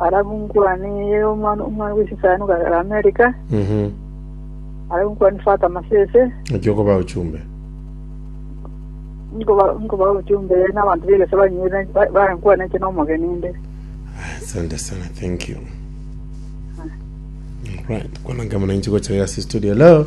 Arabu nkwane omwana omwana bwe sesani okagera America. Mhm. Arabu nkwane fata masese. Naki okoba ochumbe. Nkoba nkoba ochumbe n'abanto b'egese banyuire bankwana inche n'omogeni inde. Ah, Asante sana, thank you. Right, kwananka muna inche gocha yasi studio. Hello.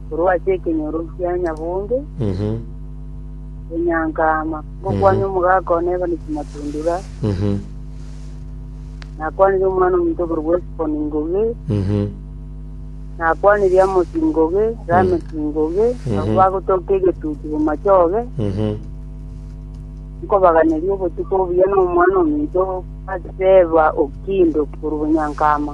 korwa ase ekenyoro kia nyabonge gonyanka ama, ngokwania omogaka one Evanisi Matundura, nakwanirie Omwana-o-Omonto okorokwa Esifoni Ngoge, nakwanirie Amosi Ngoge, Lameki Ngoge, abwo bagotoka egetutu bomachoge, nkobaganeria obotuko obuya na Omwana-o-Omonto Bathsheba o Kindo korwa Gonyanka ama.